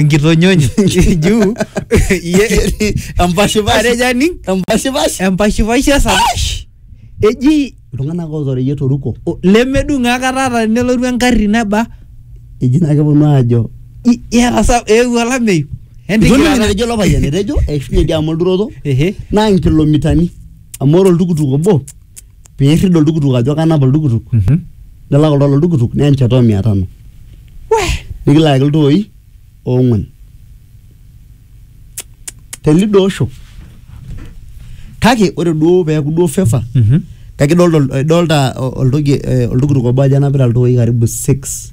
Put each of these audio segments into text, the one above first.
nkitonyonyo juu iye empashipasha atejo aning empashipasha empashipasha esapash eji iltung'anak ootoreyie toruko o- lemedung akata ata nelotu engarri neba eji naa keponu aajo i- iyata sa eewuo olameyu Entiki Itoning'o taata. enetejo ilo payian etejo eishunye diama olturoto Ehe. naa nkilomitani amu ore oltukutuk obo piirrid oltukutuk ajo kanap oltukutuk Mhm. nilak oltau loltukutuk neya enchata o mia tano nikilaaki iltooi oong'uan tenidoosho kake ore duo peeku duo favor Mhm. kake idolta idolta oltoki eh, oltukutuk obo ajo enapita iltooi karibu six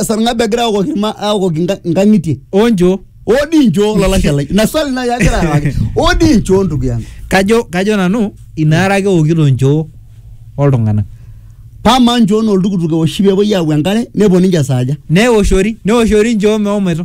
esarng'ab egira aokoki ilma- aokoki nka- nkang'itie onjo oo dii nchoo olalashe lai ina swali nai agira arewaki oo dii nchoo ndugu yangu kajo kajo nanu inaara ake eokito nchoo oltung'anak pamaa nchoo naa oltukutuk eoshi peepuoi aau enkare nepuo ninche saaja neoshori neoshori nchoo meomoito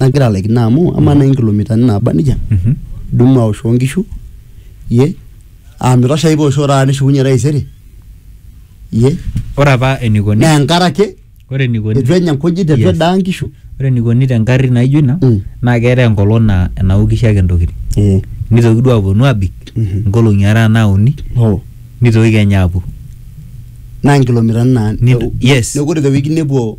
nagira alaikino amu amaa nai nkilomitani naaba nejia Mhm. dumu aoshoo nkishu ye aa mitosha ai pooshoo taata nishukunye taisere ye ore apa enikoni naa enkare ake ore enikoni eitu enya nkujit eitu Yes. edaa nkishu ore enikoni te ngarri naijo ina Mm. naa keetae enkolong naa enaokisho ake ntokitin Eh, nitoki duo aponu abik Mhm. nkolong'i are anaa uni oh. nitoki kenya apuo naa nkilomitani naa Nito- yes. neeku ore te wiki nepuo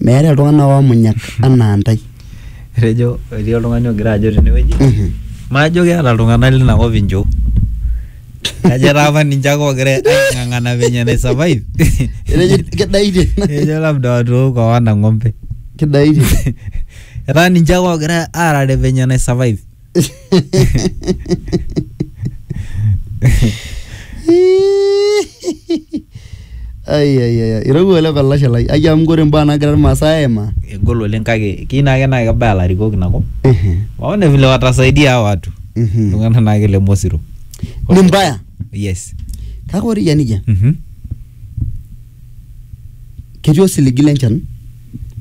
meeta iltung'anak oomunyak anaa ntae etejo etii oltung'ani ogira ajo tenewueji Mhm. majo keeta iltung'anak lina kop inchoo kajo etaa apa ninche ake ogira aing'ang'ana venye nai survive Etejo kidaitie ejo labda watooko hawana ng'ombe kidaitie etaa ninche ake ogira aarare venye nai survive ai ai ai irowua ele palashe lai ai amu kore mbaa nagira irmaasai aimaa egol oleng kake kii naake naa kebaya ilarikok inakop Ehe, waone vile watasaidia hawa watu mhm. iltung'anak naake le mosiro ni mbaya yes kake ore iyia nijia Mhm. ketii osiligi le nchan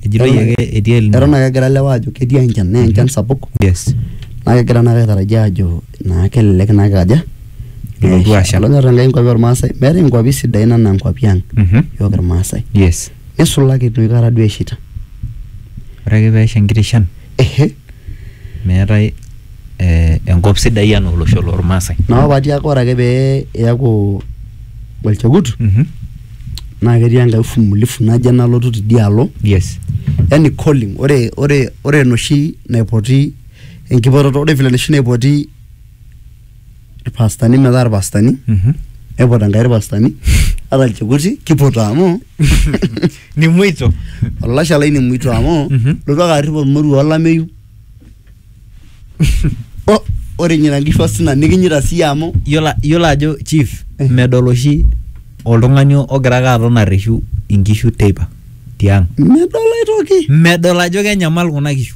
ejitoi ake etii el Nino. eton ake egira ilewa aajo ketii enchan naa enchan sapuk yes naa kegira naa ake aitarajia aajo naa kelelek naa ake aja Elotu asha. olonyor Enkai inkuapi ormaasai meetae inkuapi sidain enaa inkuapi ang Mhm. yiok irmaasai yes nisulaki enoshi kata duo eshaita ore ake peesha enkiti shan meetae eh, enkop sidai anaa olosho lormaasai naa apa tiaku ore ake pee iyaku olchekut Mhm. naa ketii enkae ufumulifu naje nalotu tidialo yes yani calling ore ore ore enoshi naipoti enkipototo ore vile enoshi naipoti irpastani metaa irpastani Mhm. neipot enkai irpastani ata ilchekuti kipoto amu Nimuito. olashe lai nemuito amu Mhm. lotu ake arrip olmoruo olameyu O- ore nyina nkishu osina nikinyita siyie amu Yiolo yiolo ajo chief Eh. medol oshi oltung'ani ogira ake aton arreshu inkishu teipa tiang. medol aitoki Medol ajo kenyamal kuna kishu.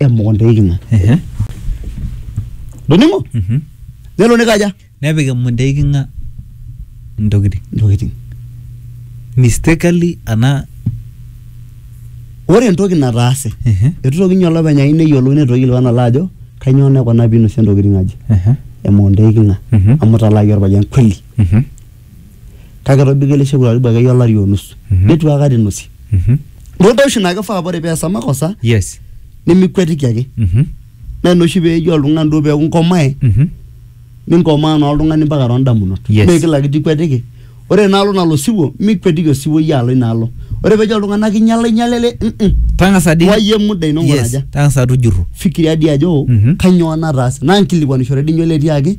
emukunta eiking'a Ehe. doning'o Mhm. nelo nikaja nepik emukunta eiking'a intokitin intokitin mistakenly ana ore entoki nataase Ehe. eitu toki ninye olopeny ayieu neyiolou neitu toki ilwana alo ajo kainyoo naikuna piinosie intokitin aje emukunta eiking'a Mhm. amu italaaki orpayian kweli Mhm. kake etobiko ele shekut karibu akeyie olari onusu Mhm. neitu aikata inosie Mhm. naa imbaa oshi naa kifaa ore peesa makosa yes nimikwetiki ake Mhm. naa ina oshi peeji oltung'ani duo peeku inkomae Mhm. ninkomaa naa oltung'ani mpaka toondamunot Yes. mee kila kitu ikwetiki ore inaalo nalo osiwuo mikwetiki osiwuo iyie alo inaalo ore peejo oltung'ani kinyala inyala ele mm-mm. tang'asa dii wayie muda ino yes ng'uraja tang'asa tujurru fikiria dii ajo Mhm. kanyoo nataase naa nkilikwanishore dii inyo ele tiaki